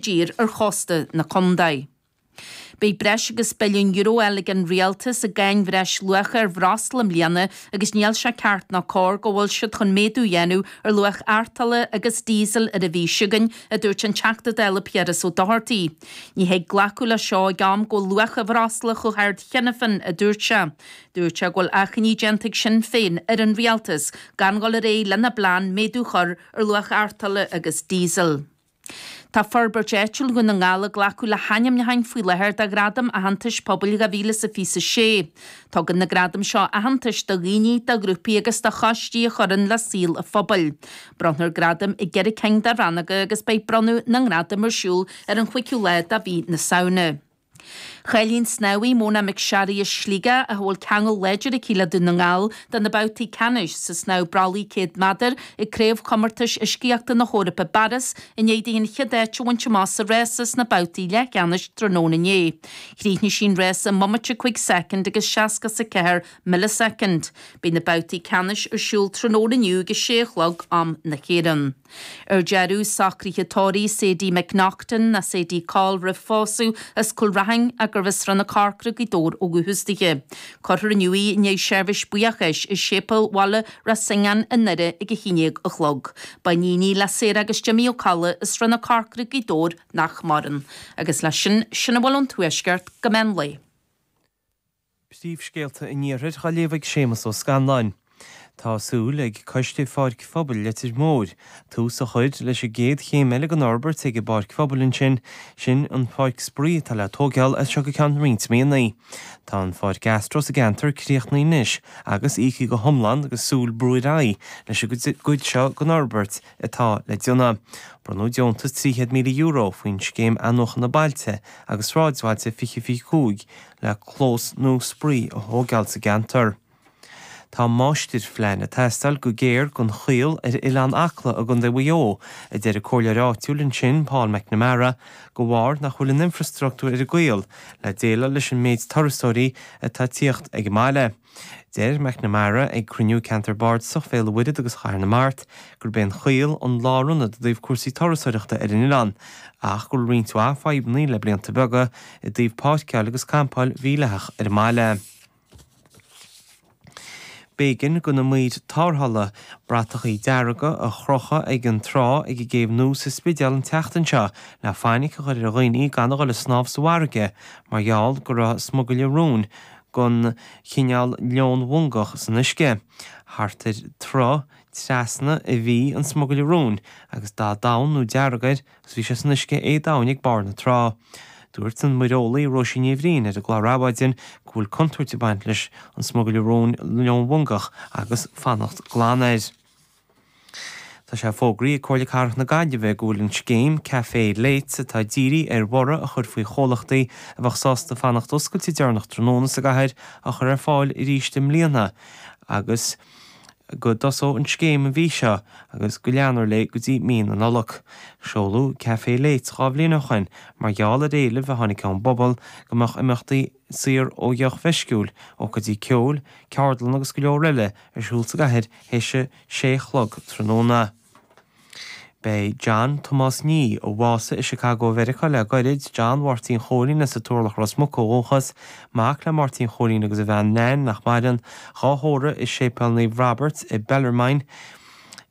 dtír ar chósta na contae. Beidh breis agus billiún euro eile ag an Rialtas i gcáin bhreis luacha ar bhreosla i mbliana agus níl sé ceart ná cóir go bhfuil siad chun méadú dhéanamh ar luach artola agus díosal ar ais againn, a dúirt an Teachta Dála Piaras Ó Dochartaigh. Ní thig glacadh le seo ag am go bhfuil luach an bhreosla chomh hard cheana féin a dúirt sé. Dúirt sé go bhfuil achainí déanta ag Sinn Féin ar an Rialtas gan dhul ar aghaidh lena bplean méadú chur ar luach artola agus díosal. Tá Forbairt Áitiúil Dhún na nGall ag glacadh le hainmniúcháin faoi láthair do Ghradaim Aitheantais Pobail 2026. Tugann na gradaim seo aitheantais do dhaoine, do ghrúpaí agus do choistí a chuireann le saol an phobail. Bronnfar gradaim i gceithre cinn de rannóga agus beidh bronnadh na ngradam ar siúl ar an chúigiú lá de mhí na Samhna. Cháiligh an snámhaí, Mona McSharry as Sligeach, a bhfuil ceangal láidir aici le Dún na nGall, do na babhtaí ceannais sa snámh brollaigh 100 meadar ag Craobhchomórtais Uiscíochta na hEorpa i bPáras i ndiaidh di an chéad áit a bhaint amach sa rása sna babhtaí leathcheannais tráthnóna inné. Chríochnaigh sí an rása i mbomaite 5 soicind agus seasca is a ceathair milleasoicind. Beidh na babhtaí ceannais ar siúl tráthnóna inniu ag a sé a chlog, am na hÉireann. Ar deireadh, socruithe tórraimh, Sadie McNaughton, nó Sadie Coll roimh phósadh, as Cúil Raithin, arbh as Srath na Corcra Gaoth Dobhair ó dhúchas di. Cuirfear inniu í i ndiaidh seirbhís buíochais i Séipéal Bhaile Raisín i nDoire ag a haon dhéag a chlog. Ba iníon í le Sarah agus Jimmy Ó Colla as Srath na Corcra Gaoth Dobhair nach maireann. Agus leis sin, sin a bhfuil ón Tuaisceart go meán lae. Príomhscéalta an Iarthair dhá léamh ag Séamus Ó Scanláin. Tá súil ag Coiste Pháirc Phobail Leitir Móir tús a chur leis an gcéad chéim eile den fhorbairt ag an bPáirc Phobail ansin, sin an Pháirc Spraoi atá le tógáil as seo go ceann roinnt míonna. Tá an Pháirc Astro sa gceantar críochnaithe anois agus íoctha go hiomlán agus súil brú ar aghaidh leis an gcuid seo den fhorbairt atá le déanamh. Bronnadh deontas €300,000 faoin Scéim Athnuachan Bailte agus Sráidbhailte 2025 le clós nua spraoi a thógáil sa gceantar. Tá máistirphlean ag teastáil go géar don Chaol ar Oileán Acla i gContae Mhaigh Eo, a deir an comhairleoir áitiúil ansin, Paul McNamara, de bharr nach bhfuil an infreastruchtúr ar an gCaol le déileáil leis an méid turasóirí atá ag tíocht ag an mbaile. Dúirt McNamara, ag cruinniú Cheantar Bardasach Bhéal an Mhuirthead agus Chathair na Mart, gurb é an Chaol an lárionad i dtaobh cúrsaí turasoireachta ar an oileán, ach go bhfuil roinnt mhaith fadhbanna le blianta beaga i dtaobh páirceáil agus campáil mhídhleathach ar an mbaile. B'éigean do na maoir tárrthála bratachaí dearga a chrochadh ag an trá ag an gcéibh nua sa Spidéal an tseachtain seo le fainic a chur ar dhaoine gan a dhul ag snámh sa bhfarraige mar gheall go raibh smugairle róin gon chineál leon mhongach san uisce. Thart ar troigh trasna, a bhí an smugairle róin agus dath donn nó dearg air agus bhí sé san uisce éadomhain ag barr na trá. Dúirt an Muireolaí Róisín Ní Bhriain ar an gclár Adhmhaidin go bhfuil contúirt ag baint leis an smugairle róin leon mhongach agus fanacht glan air. Tá sé fógraithe ag Comhairle Cathrach na Gaillimhe go bhfuil an scéim Café Late, atá ag dírí ar bhorradh a chur faoi chomhlachtaí a bheadh sásta fanacht oscailte deireanach tráthnóna sa gcathair, á chur ar fáil arís i mbliana agus go dtosóidh an scéim an mhí seo agus go leanfar léi go dtí mí na Nollag. Seoladh Café Late dhá bhliain ó shoin mar gheall ar éileamh a tháinig ón bpobal go mbeadh imeachtaí saor ó dheoch mheisciúil, ócáidí ceoil, ceardlanna agus go leor eile ar siúl sa gcathair théis a sé chlog tráthnóna. Beidh John Tomás Nee, a bhásaigh i Chicago Mheiriceá le gairid, John Mháirtín Chóilín as an Turlach Ros Muc ó dhúchas, mac le Máirtín Chóilín agus a bhean Nain, nach maireann, dhá thórramh i Séipéal Naomh Robert Bellarmine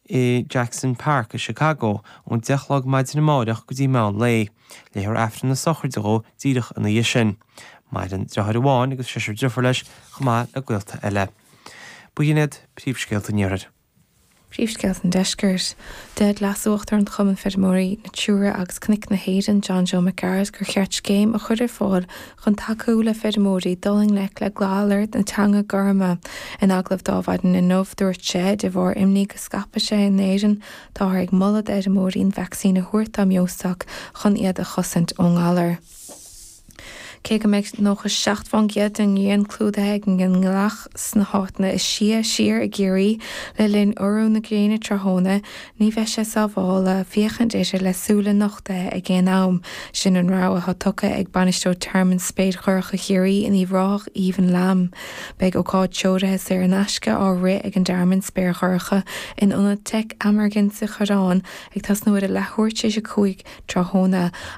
i Jackson Park i Chicago ón deich chlog maidin amáireach go dtí meán lae. Léifear Aifreann na sochraide dhó díreach ina dhiaidh sin. Maireann deartháir amháin agus seisear deirfiúr leis chomh maith le gaolta eile. B'in iad príomhscéalta an iarthair. Príomhscéalta an deiscirt. Dúirt Leas-Uachtarán Chumann Feirmeoirí Natura agus Cnoic na hÉireann, John Joe Mac Gearailt, gur cheart scéim a chur ar fáil chun tacú le feirmeoirí dul i ngleic le galar na teanga gorma. In agallamh Adhmhaidin inniu, dúirt sé, de bharr imní go scaipfeadh sé in Éirinn Táthar ag moladh d'fheirmeoirí an vacsaín a thabhairt dá mbeostoc chun iad a chosaint ón ngalar. Cé go mbeidh nócha seacht fán gcéad den ngrian clúdaithe ag an ngealach sna háiteanna is sia siar i gCiarraí le linn urú na gréine tráthnóna, ní bheidh sé sábháilte féachaint uirthi le súile nochtaithe ag aon am. Sin an rabhadh atá tugtha ag Bainisteoir Thearmann Spéir Dhorcha Chiarraí in Uíbh Ráthach, Aoibheann Lambe. Beidh ócáid treoirithe saor in aisce á rith ag an dTearmann Spéir Dhorcha in ionad Tech Amergin sa Choireán ag tosnú ar a leathuair tar éis a cúig tráthnóna agus.